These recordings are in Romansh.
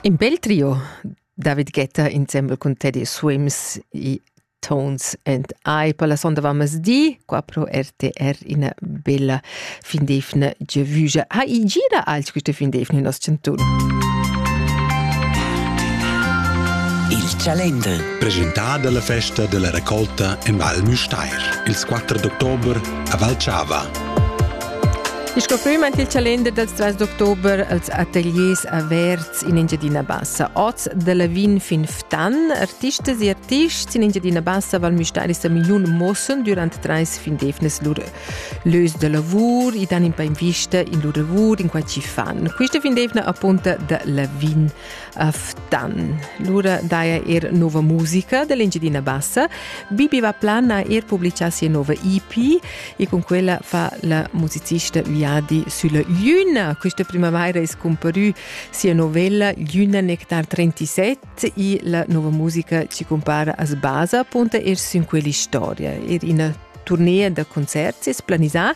In bel trio, David Guetta insembel cun Teddy Swims i Tones and I per la sonda di, qua pro RTR ina bella fin d'efna giavugia. Ha i gira alch questa fin d'efna in nos centun? Il Chalender. Presentà dalla festa della raccolta en Val Müstair. Il 4 d'october a Valchava. Il scoffüm ant il calender dels trais d'october als ateliers averts in Engiadina Bassa. Oz de Lavin fin Ftan, artistas e artists in Engiadina Bassa Val Müstairi sa million mossen durant trais fin defnes lur lös de lavur e dan in pa invista in lur lavur in quai ci fan. Quista fin defna appunta de Lavin a Ftan. Lura daja er nova musica dell'Engiadina Bassa. Bibi va plan a er publicar sia nova EP e con quella fa la musicista Viadi sulla Luna. Questa primavera è scomparù sia novella Luna Nectar 37 e la nova musica ci compara a sbasa punta er su in quella storia. Er una Turnea da concerts es planisà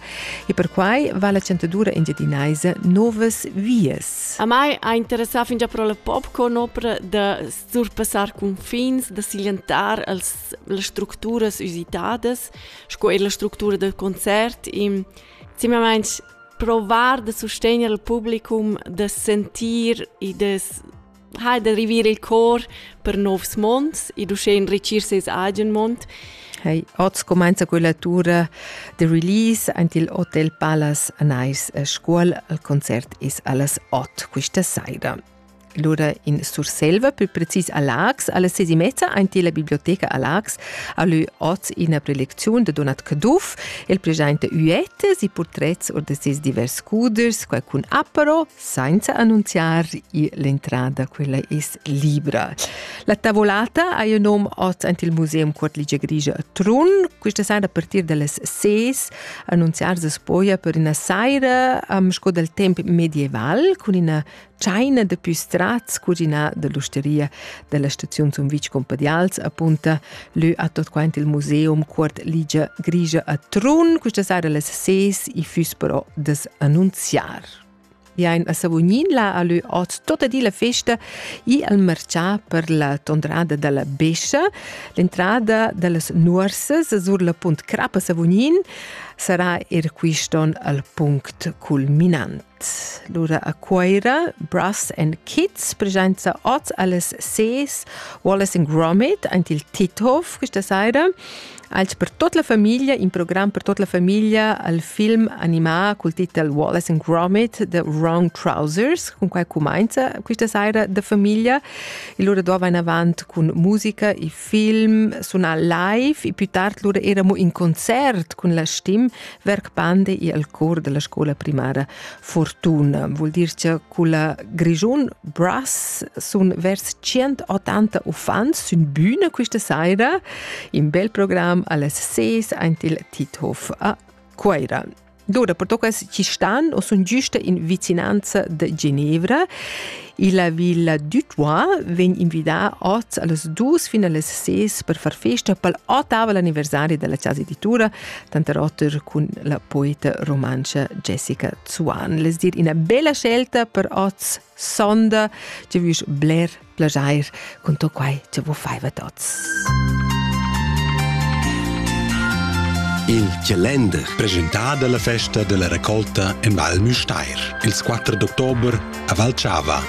e perquai va la chantadura engiadinaisa novas vias. A mai ha interessà fingià pro la popcorn opera da surpassar cunfins, da silentar als, las structuras usitadas, sco er la structura del concert e simplesmente provar de sostener il publicum, de sentir e de ha da rivir il cor per novs monds e uschè enrichir ses agen mond. Hey, oz cumainza quella tura de release ant il Hotel Palace a Nice a Scuol. Il concert is allas 8 questa saira. Lura in Surselva, più precis a Lax, alle ses e mezza ant la biblioteca a Lax, a lü oz ina prelezione de Donat Caduff, el presenta uette, si portrets or de ses divers scuders, qualcun apero, Sainza annunziar l'entrada, quella es libra. La tavolata ha il nom oz ant il Museum Cuort Ligia Grigia a Trun. Questa sera a partir dalle 6 annunziar se spoia per una saira um, sco dal temp medieval con una tscheina de più strats cucina dell'osteria della stazione Sumvitsch Compadials appunta lü a tot quant il Museum Cuort Ligia Grigia a Trun. Questa sera alle 6 i füss però das annunziar. Bien a Savognin la ha lü hoz tota di la festa i al marchà per la tondrada da la Bescia. L'entrada da las nuorsas sur la punt Crap a Savognin sarà er quiston al punct culminant. Lura a Cuaira, Brass and Kids presenza hoz alles ses Wallace and Gromit ant il Tithof questa saira. als per tut la famiglia, in program per tut la famiglia al film animà col titel Wallace and Gromit, The Wrong Trousers, con quai cumainza questa saira da famiglia. E lura do in avant con musica e film, suna live e più tard lura eramo in concert con la stim Werk Bande e al cor della scuola primaria Fortuna vul dir che culla Grischun Brass sun vers 180 uffants sün bühne questa saira in bel program alles ses aint il Tithof a Cuaira. Dura per toccas ci stan o sun giusta in vicinanza de Ginevra La Villa Dutois vegn invidà oz a las dus fin a las ses per far festa pel ottavel anniversari da la chasa editura, tanter oter cun la poeta rumantscha Jessica Zuan. Les dir ina bella scelta per oz sonda, tge vus bler plaschair cun tot quai che vus faiva tots. Il calender presentà dalla festa della raccolta in Val Müstair. Ils 4 d'october a Valchava.